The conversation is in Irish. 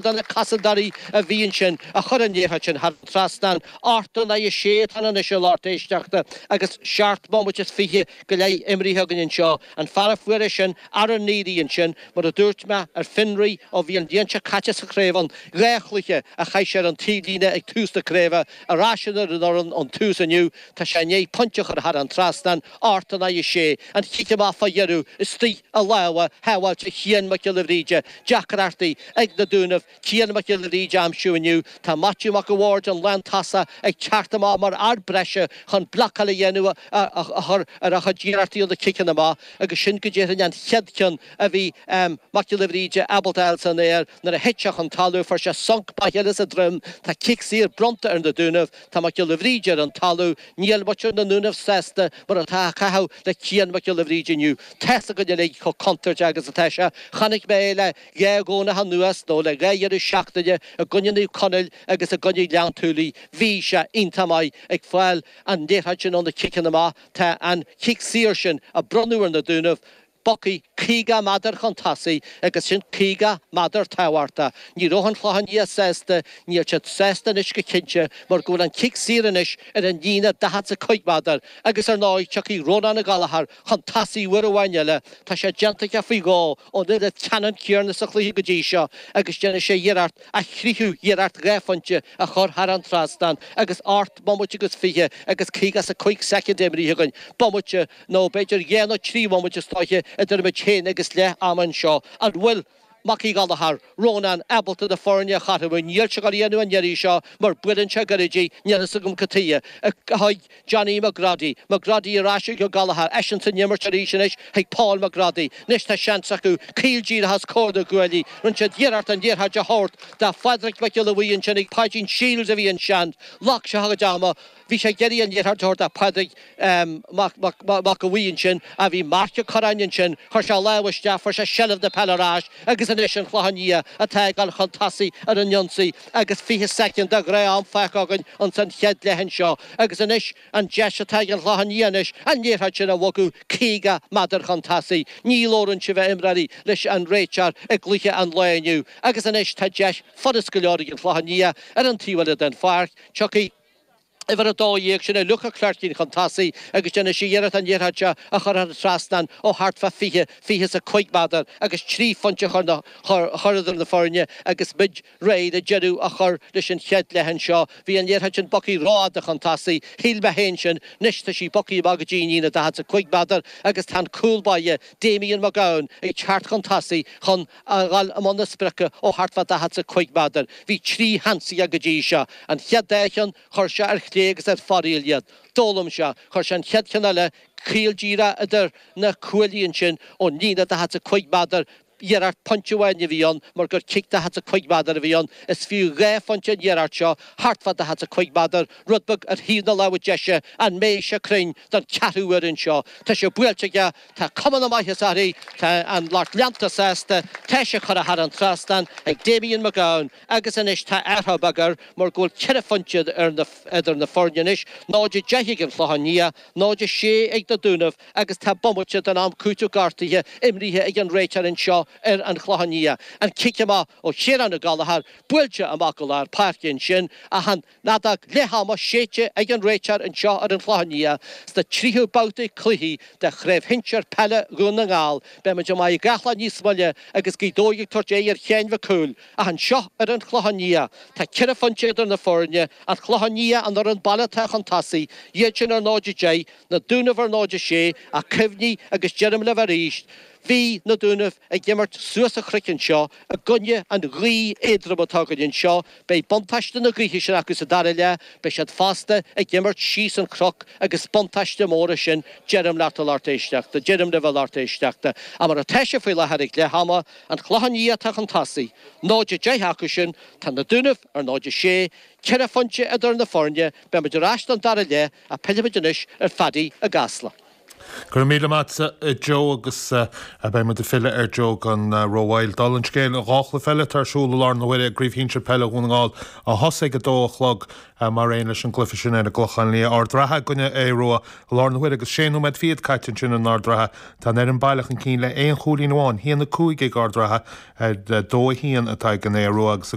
do na cosantóirí a bhí ansin, a chuir an liathróid sin thar an trasnán, ocht in aghaidh a sé atá ann anois a lucht éisteachta agus seacht mbomaite is fiche go leith imrithe againn anseo, an fear a fuair é sin ara n-éirí ansin, mar a dúirt mé, ar fionraí, ó bhí an bhliain seo caite sa chraobh ann, dhá chluiche a chaith sé ar an taobhlíne ag tús na craoibhe, ar ais ar an fhoireann ón tús inniu, tá sé i ndiaidh pointe a chur thar an trasnán, Ocht in aghaidh a sé, an cic amach fá dheireadh istigh i lámha shábháilte Chiain Mac Giolla Bhríde, deacrachtaí ag na Dúnaibh Cian Mac Giolla Bhríde a aimsiú inniu, tá Maitiú Mac a' Bhaird, an lántosach, ag teacht amach mar fhear breise chun blocáil a dhéanamh a chur ar a chuid iarrachtaí ó na ciceanna amach agus sin go déarfainn an chéad cheann a bhí Mac Giolla Bhríde ábalta a fháil san aer nuair a thit sé chun talamh, fuair sé sonc maith eile sa droim, tá cic saor bronnta ar na Dúnaibh. Tá Mac Giolla Bhríde ar an talamh, níl muintir na nDúnaibh sásta mar atáthar ag caitheamh le Cian Mac Giolla Bhríde inniu. Tá's againn uilig chomh contúirteach agus atá sé. Chonaic mé é le dhá Dhomhnach anuas, nó le dhá dheireadh seachtaine, i gcoinne Naomh Conaill agus i gcoinne Ghleann tSúilí. Bhí sé iontach maith ag fáil an liathróid sin ó na ciceanna amach. Tá an cic saor sin a bronnadh ar na Dúnaibh, Bogtha caoga meadar chun tosaigh agus sin caoga meadar tábhachtach. Ní raibh an Clochán Liath sásta, níl siad sásta anois go cinnte mar go bhfuil an cic saor anois ar an líne daichead 's a cúig mheadar agus ar ndóigh tiocfaidh Rónán Ó Gallachair chun tosaigh uair amháin eile, tá sé déanta aige faoi dhó ón uillinn ceannann céarna sa chluiche go dtí seo agus déanfaidh sé iarracht a thríú hiarracht dhá phointe a chur thar an trasnán agus ocht bomaite agus fiche agus caoga 's a cúig soicind imrithe againn, bomaite Nó b'fhéidir dhá nó trí bhomaite istigh idir muid féin agus leath ama anseo. An bhfuil Mac Uí Ghallachair, Rónán, ábalta na foirne a chothromú? Níl sé ag dul a dhéanamh an iarraidh seo mar buaileann sé go gairid í, níl a fhios agam cad tuighe, chuig Johnny McGroddy. McGroddy ar ais ag Ó Gallachar, eisean san imirt arís anois chuig Paul McGroddy. Anois tá seans acu caol díreach os comhair na gcuaillí, rinne siad iarracht an liathróid a thabhairt do Phádraig Mac Giolla Bhuí ansin ach Páidín Shiels a bhí ansin, ghlac sé a chuid ama, Bhí sé ag iarraidh an liathróid a thabhairt do Phádraig Mac Giolla Bhuí ansin, ach bhí Marc Ó Corráin ansin, chuir sé lámh isteach, fuair sé seilbh na peile ar ais agus anois an Clochán Liath atá ag dul chun tosaigh ar an ionsaí agus 20 soicind de ghnáth-am fágtha againn ins an chéad leath anseo agus anois an deis atá ag an Chlochán Liath anois an liathróid sin a bhogadh 50 meadar chun tosaigh. Ní labhrann sibh a imreoirí leis an réiteoir i gcluiche an lae inniu agus anois tá deis furast go leor ag an Chlochán Liath ar an taobh eile den pháirc, tiocfaidh Uimhir a dó dhéag, sin é Luke Ó Cléirchín chun tosaigh agus déanfaidh sé iarracht an liathróid seo a chur thar an trasnán ó thart fá fiche, fiche is a cúig meadar agus trí phointe a chur na, chur, a chur idir na foirne agus muid réidh le deireadh a chur leis an chéad leath anseo. Bhí an liathróid sin bogtha rófhada chun tosaigh, shíl mé féin sin, anois tá sí bogtha amach go dtí an líne daichead 's a cúig meadar agus tá an cúl báire, Damien Mac Gabhann, ag teacht chun tosaigh chun, a dhul i mbun a sprioca ó thart fá daichead 's a cúig méadar. Bhí trí sheans aige go dtí seo. An chéad dá cheann, chuir sé ar chlé agus ar fóraoil iad. D'fhoghlaim sé. Chuir sé an chéad cheann eile caol díreach idir na cuaillí ansin ón líne daichead 's a cúig méadar. Iarracht pointe amháin a bhí ann mar gur cic daichead 's a cúig méadar a bhí ann is fiú dhá phointe an iarracht seo, thart fá daichead 's a cúig méadar, rud beag ar thaobh na láimhe deise. An mbeidh sé cruinn don ceathrú uair anseo? Tá sé buailte aige. Tá cuma na maitheasa uirthi. Tá an lucht leanta sásta, tá sí curtha thar an trasnán ag Damien McGowan agus anois tá athrú beag air mar go bhfuil ceithre phointe idir na foirne anois, 0-10 ag an Chlochán Liath, 0-6 ag na Dúnaibh agus tá bomaite den am cúitimh gortaithe imrithe ag an réiteoir anseo ar an Chlochán Liath. An cic amach ó Chiarán Ó Gallachóir buailte amach go lár páirce ansin ach an fheadóg leath ama séidte ag an réiteoir anseo ar an Chlochán Liath sa tríú babhta cluichí de Chraobh Shinsir Peile Dhún na nGall, beidh muid i Machaire Gathlán níos moille agus Gaoth Dobhair ag tabhairt aghaidh ar Sheán Mac Cumhaill, ach anseo ar an Chlochán Liath, tá ceithre phointe idir na foirne, an Clochán Liath an fhoireann baile atá chun tosaigh, iad sin ar 0-10, Na Dúnaibh ar 0-6, ach cuimhnigh, agus deirim libh arís, bhí na Dúnaibh ag imirt suas an chnoic anseo i gcoinne an ghaoth éadrom atá againn anseo, Beidh buntáiste na gaoithe sin acu sa dara leath, beidh siad fosta ag imirt síos an cnoc agus buntáiste mór é sin, deirim leat, a lucht éisteachta, deirim libh, a lucht éisteachta, ach mar atá sé faoi láthair ag leath ama, an Clochán Liath atá chun tosaigh, 0-10 acu sin, tá na Dúnaibh ar 0-6, ceithre phointe idir na foirne, beimid ar ais don dara leath ach pillfimid anois ar Phádaí i gCasla. Go raibh míle maith agatsa, a Joe, agus beidh muid ag filleadh ar Joe gan rómhoill. Dála an scéil, dhá chluiche eile atá ar siúl i láthair na huaire i gCraobh Shinsir Peile Dhún na nGall a thosaigh ag a dó a chlog, mar aon leis an gcluiche sin ar an gClochán Liath, Ard an Rátha i gcoinne Aodh Ruadh, i láthair na huaire agus sé nóiméad fichead caite ansin in Ard an Rátha. Tá an fhoireann baile chun cinn le haon chúilín amháin, 1-5 ag Ard an Rátha, 2-1 atá ag an Aodh Ruadh, agus.